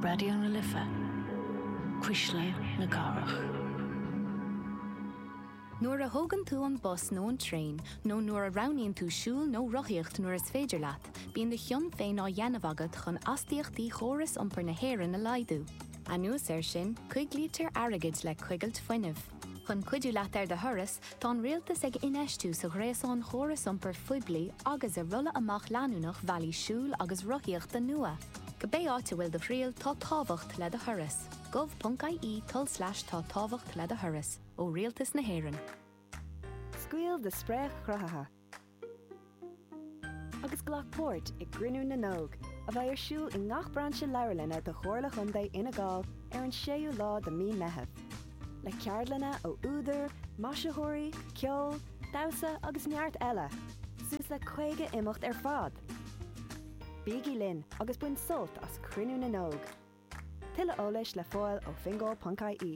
Raidió na Life, Cuisle na Cathrach. Nuair a thógann tú an bus nó an traein, nó nuair a roghnaíonn tú siúl nó rothaíocht nuair is féidir leat, bíonn do chion féin á dhéanamh agat chun astaíochtaí chóras iompair na hÉireann a laghdú. Anuas air sin, coiglítear airgead le coigilt fuinnimh. Chun cuidiú leat ar do thuras, tá an Rialtas ag infheistiú sa ghréasán chóras iompair phoiblí agus i rolladh amach leanúnach bhealaí siúil agus rothaíochta nua. Cibé áit a bhfuil do thriall, tá tábhacht le do thuras. gov.ie tulslais tá tábhacht le do thuras, ó Rialtas na hÉireann. Scaoil do Spréach Chruthaithe! agus glac páirt i gCruinniú na nÓg, a bheidh ar siúl i ngach brainse leabharlainne de Chomhairle Chontae Fhine Gall ar an 6ú lá de Mí Meitheamh, le ceardlanna ó údair, maisitheoirí, ceol, damhsa agus neart eile, suas le 50 imeacht ar fad! Bígí linn agus bain sult as Cruinniú na nÓg! Tuilleadh eolais le fáil ó fingal.ie.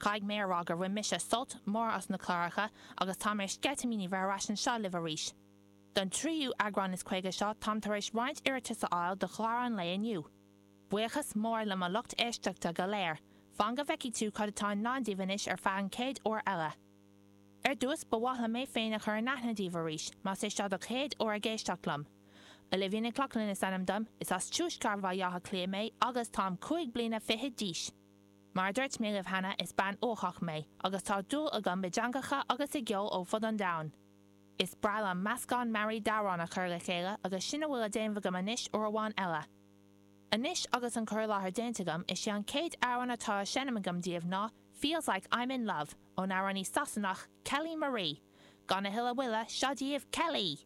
Caithfidh mé a rá gur bhain mise sult mór as na cláracha agus táim ar sceitimíní bheith ar ais anseo libh arís. Don tríú eagrán is caoga seo táim tar éis roinnt iarratais a fháil do chlár an lae inniu. Buíochas mór le mo lucht éisteachta go léir, fan go bhfeicidh tú cad atá i ndán daoibh anois ar feadh an chéad uair eile. Ar dtús, ba mhaith liom mé féin a chur in aithne daoibh arís, más é seo do chéad uair ag éisteacht liom. Olivia Nic Lochlainn is ainm dom, is as Tuaisceart Bhaile Átha Cliath mé agus táim cúig bliana fichead d'aois. Mar a dúirt mé libh cheana, is bean uathach mé, agus tá dúil agam i dteangacha agus i gceol ó fud an domhain. Is breá liom meascán mearaí d'amhráin a chur le chéile agus sin a bhfuil le déanamh agam anois uair amháin eile. Anois agus an cur i láthair déanta agam, is é an chéad amhrán atá á seinm agam daoibh ná Feels Like I'm In Love, ón amhránaí Sasanach, Kelly Marie. Gan a thuilleadh moille, seo daoibh, Kelly!